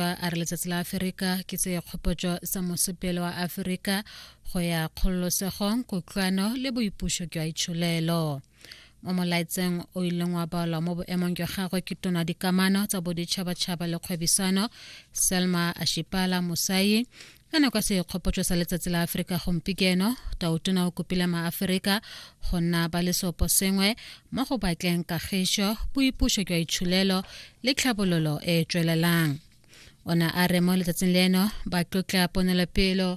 Motsepa a re letsatsi la Aferika ke tse kgopotso sa mosepele wa Aferika go ya kgololosegong kutlwano le boipuso jwa itsholelo mo molaetseng o ileng wa balwa mo boemong jwa gagwe ke tona dikamano tsa boditšhabatšhaba le kgwebisano selma ashipala mosai ka nako ya sekgopotso sa letsatsi la aforika gompikeno tautona o kopile maaforika go nna ba lesopo sengwe mo go batleng kagišo boipuso jwa itshulelo le tlhabololo e e tswelelang o ne a re mo letsatsing leno ba tlotla ponelopelo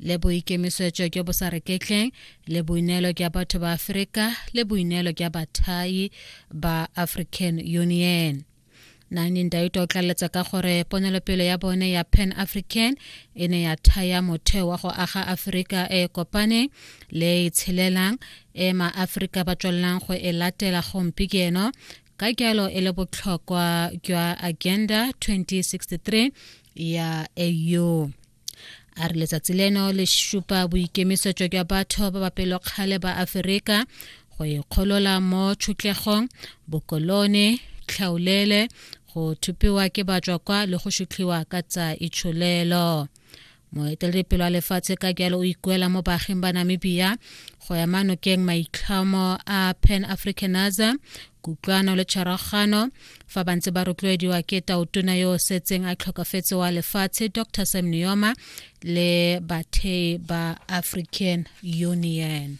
le boikemisetso jo bo sa reketleng le boineelo jwa batho ba aforika le boineelo jwa bathai ba african union nani ndauta o tlaleletsa ka gore ponelopele ya bone ya pan african e ne ya thaya motheo wa go aga aforika e kopaneng le e itshelelang e maaforika ba tswelelang go e latela gompieno ka jalo e le botlhokwa jwa agenda 2063 ya au a re letsatsi leno le supa boikemisetso jwa batho ba ba pelokgale ba aferika go ikgolola mo tšhutlegong bokolone tlhaolele go thupiwa ke batswa kwa le go sutlhiwa ka tsa itsholelo moeteledipelo wa lefatshe ka jalo o ikuela mo baaging ba namibia go ya manokeng maitlhomo a pan africanism kutlwano le tshwaragano fa ba ntse ba rotloediwa ke taotona yo o setseng a tlhokafetse wa lefatshe dr sam neoma le bathei ba african union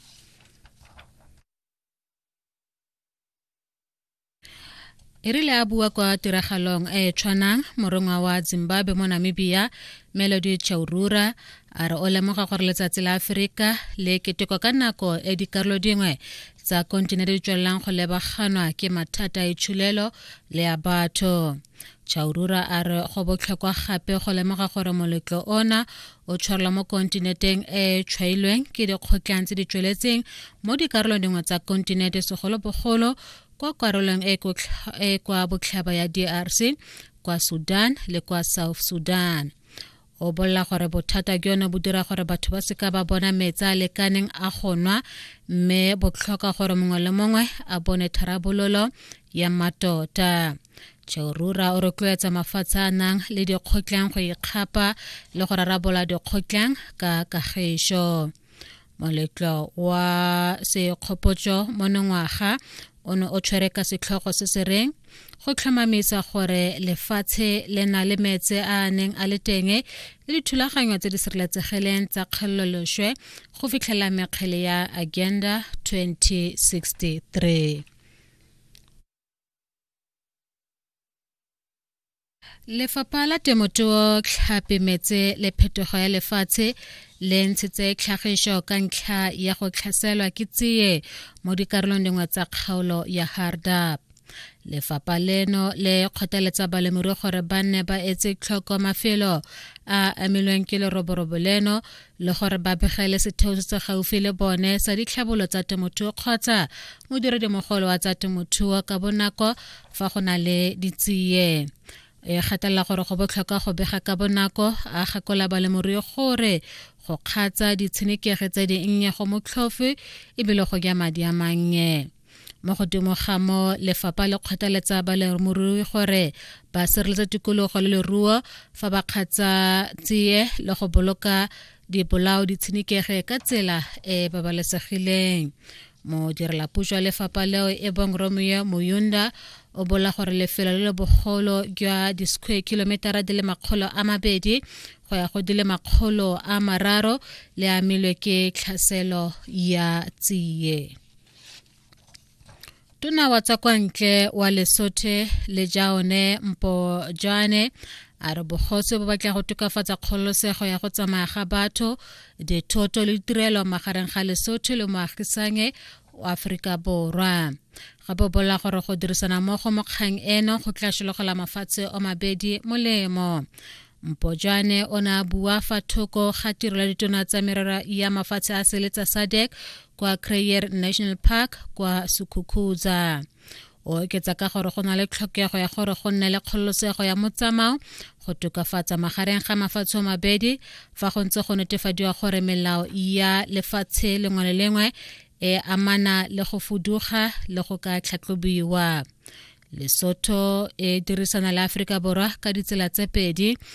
e rile a bua kwa tiragalong e e tshwanang morongwa wa zimbabwe mo namibia melody chaurura a re o lemoga gore letsatsi la aforika le keteko ka nako e dikarolo dingwe tsa kontinente di tswelelang go lebaganwa ke mathata a itshulelo le a batho chaurura a re go botlhokwa gape go lemoga gore moletlo ona o tshwarelwa mo kontinenteng e e tshwailweng ke dikgotlang tse di tsweletseng mo dikarolong dingwe tsa kontinente segolobogolo kwa karolong e e kwa botlhaba ya drc kwa sudan le kwa south sudan o bolela gore bothata ke yone bo dira gore batho ba seka ba bona metse a lekaneng a go nwa mme botlhoka gore mongwe le mongwe a bone tharabololo ya matota cheurura o rotloetsa mafatshe a nang le dikgotleng go ikgapa le go rarabola dikgotleng ka kagišo moletlo wa sekgopotso monongwaga o ne o tshwere ka setlhogo se se reng go tlhomamisa gore lefatshe le na le metse a a neng a le teng le dithulaganyo tse di sireletsegileng tsa kgololoswe go fitlhela mekgele ya agenda 2063 Lefapha la Temothuo, Tlhapi, Metse le Phetogo ya Lefatshe le ntshitse tlhagiso ka ntlha ya go tlhaselwa ke tsie mo dikarolong dingwe tsa kgaolo ya Hardap. Lefapha leno le kgothaletsa balemirui gore ba nne ba etse tlhoko mafelo a amilweng ke leroborobo leno le gore ba begele setheo se se gaufi le bone sa ditlhabolo tsa temothuo kgotsa modiredimogolo wa tsa temothuo ka bonako fa go na le ditsie e gatelela gore go botlhokwa go bega ka bonako a gakola balemirui gore go kgatsa ditshenekegi tse di nnye go motlhofe ebile go ja madi a mannye mo godimo ga mo lefapha le kgothaletsa baleromorui gore ba sireletsa tikologo le leruo fa ba kgatsa tsie le go boloka dibolao di tshenekege ka tsela e babalesegileng modirelapuso wa lefapha leo e bong romeo moyunda o bola gore lefelo le le bogolo jwa di-square kilometera di le makgolo a mabedi go ya go di le makgolo a mararo le amilwe ke tlhaselo ya tsiye tona wa tsa kwa ntle wa lesothe le jaone mpo jane a re bogose bo batla go tokafatsa kgololosego ya go tsamaya ga batho dithoto le ditirelo magareng ga lesotho le moagisange wa aforika borwa gape o bolela gore go dirisana mmogo mo kgang eno go tla sologela mafatshe o mabedi molemo mpojane o ne a bua fa thoko ga tiro ya ditona tsa merero ya mafatshe a sele tsa sadec kwa crayer national park kwa sukhukhuza o oketsa ka gore go na le tlhokego ya gore go nne le kgololosego ya motsamao go tokafatsa magareng ga mafatshe mabedi fa go ntse go netefadiwa gore melao ya lefatshe lengwe le lengwe e amana le go fuduga le go ka tlhatlhobiwa lesotho e dirisana le aforika borwa ka ditsela tse pedi